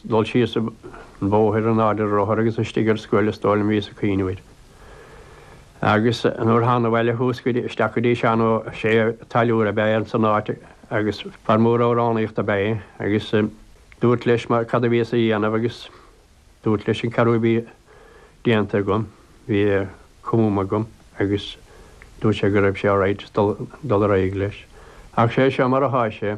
dul síos an bóthair in airde rothar agus istigh ar scoil is dóigh liom bhíos ag cuimhneamh air agus nuair thána abhaile chuas go dtí, isteach go dtí Seán Ó Sé táilliúir a b'ea é san áit agus fear mór amhránaíochta a b'ea é agus dúrt leis mar cad a bhíos a dhéanamh agus dúrt leis an cheathrú a bhí déanta agam, bhí cumtha agam agus dúirt sé go raibh sé alright dul, dul ar aghaidh leis. Ach sé seo mar athá sé.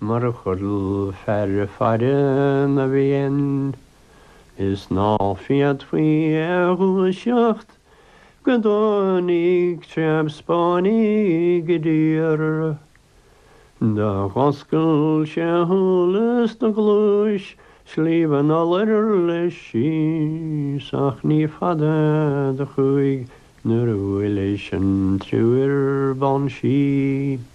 Mar a chodail fear faire na bhFiann is ná féadfaí é a dhúiseacht go dtáinig treabh Spáinnigh i dtír, Do dh'oscail sé a shúile is do ghluais Sliabh an Iolair leis síos, ach ní fada do chuaigh nuair a bhuail leis an triúr ban sí.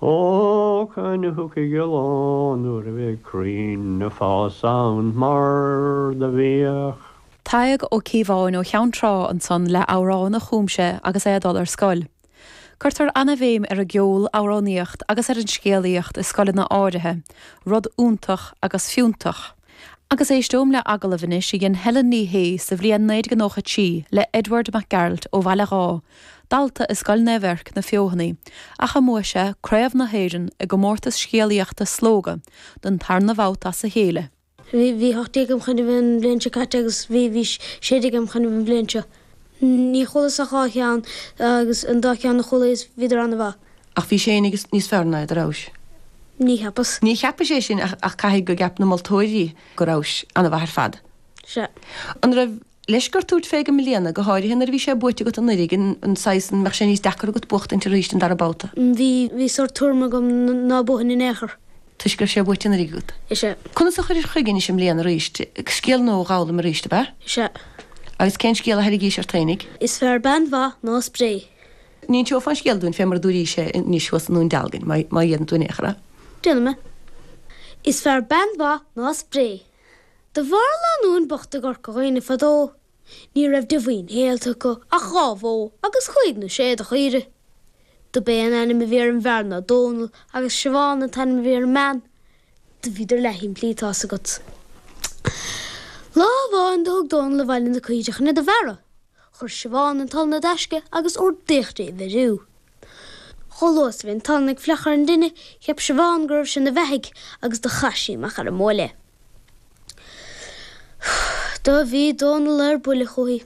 Ó, cathain a thiocfaidh an lá nuair a bheidh crainn ag fás ann mar do bhíodh. Tadhg Ó Cíobháin ó Cheann Trá ansan le amhrán a chum sé agus é ag dul ar scoil. Cuirtear an-bhéim ar an gceol, amhránaíocht agus ar an scéalaíocht i scoileanna áirithe, rud iontach agus fiúntach. Agus éisteoimid le agallamh anois a dhein Helen Ní Shé sa bhliain 1993 le Edward Mac Gearailt ó Bhaile Dháith, dalta i Scoil Naomh Eirc, Na Feothanaí, ach a mbuaigh sé craobh na hÉireann i gcomórtas scéalaíochta Slógadh don tarna babhta as a chéile. Bhí, bhí hocht déag im choinnibh an bhliain seo caite agus bhí, bhí sé déag im choinnibh an bhliain seo. Ní chualas ach dhá cheann agus an dá cheann a chualas bhíodar an-mhaith. Ach bhís féinig níos fearr ná iad, an rabhais. Ní cheapas. Ní cheapais é sin ach caithfidh go gceap na moltóirí go rabhais an-mhaith ar fad. Sea. An raibh leisc ort tabhairt fé i mbliana, go háirithe nuair a bhí sé buaite agat anuiridh, an an saghas an mbeadh sé níos deacair agat buachtaint arís an dara babhta? Bhí, bhí sórt tuairm agam ná buafainn in aon chor. Toisc go raibh sé buaite anuiridh agat? Is ea. Conas a chuiris chuige anois i mbliana arís? Scéal nua a dh'fhoghlaim arís, ab ea? Is ea. Agus cén scéal a thairrigís ort fhéinig? Is fearr bean mhaith ná spré. Ní inseofá an scéal dúinn fé mar a dúraís é anois thuas i nDún Dealgain, má dh'fhéadann tú in aon chor é. Déanfaidh mé. Is fearr bean mhaith ná spré. Do mhair lánúin bhocht i gCorca Dhuibhne fadó, ní raibh de mhaoin shaolta acu ach dhá bhó agus cúig nó sé de chaoire. Dob é an ainm a bhí ar an bhfear ná Dónal agus Siobhán an t-ainm a bhí ar an mbean. Do bhíodar leath shimplí, tá's agat. Lá amháin do thug Dónal abhaile na caoire chun iad a bhearradh. Chuir Siobhán an t-olann i dtaisce agus ordaíodh di a bheiriú. Chomh luath is a bhí an t-olann ag fiuchadh ar an dtine, cheap Siobhán go raibh sé ina bheathaidh agus do chaith sí amach ar an mbuaile é. Do bhí Dónal ar buile chúithi.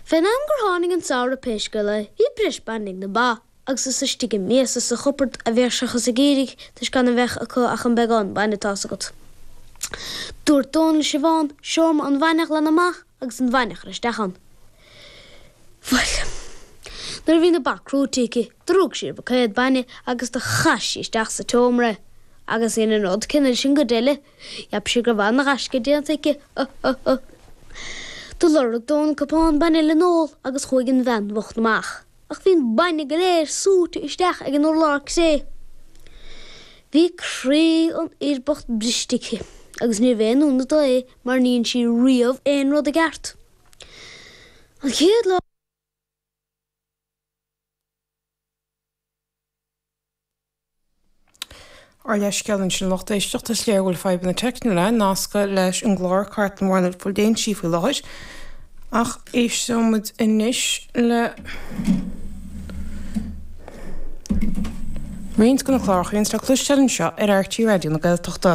Fén am gur tháinig an samhradh pé scéal é, bhí breis bainne ag na ba. agus is istigh i miasa sa chupard a bhíodh sé acu ag éirí toisc gan a bheith acu ach an beagán bainne atá fhios agat. Dúirt Dónal le Siobhán seomra an bhainne a ghlanadh amach agus an bhainne a chur isteach ann. Bhuel. nuair a bhí na ba crúite aici, do rug sí ar bhuicéad bainne agus do chaith sí isteach sa tseomra é. Agus dhein an rud céanna leis an gcuid eile. Cheap sí go raibh an-ghaisce déanta aici. Do lorg Dónal cupán bainne le n-ól agus chuaigh an bhean bhocht amach. ach bhí an bainne go léir súite isteach ag an urlár cré. Bhí croí an fhir bocht briste aici agus níorbh aon ionadh dó é mar ní dhein sí riamh aon rud i gceart. An chéad lá. Ár leithscéal ansin a lucht éisteachta, is léir go bhfuil fadhbanna teicniúla nasctha leis an gclár Cartlann Bhóthar na Léinsí faoi láthair, ach éisteoimid anois le roinnt de na cláracha a bhíonns le cloisteáil anseo ar RTÉ Raidió na Gaeltachta.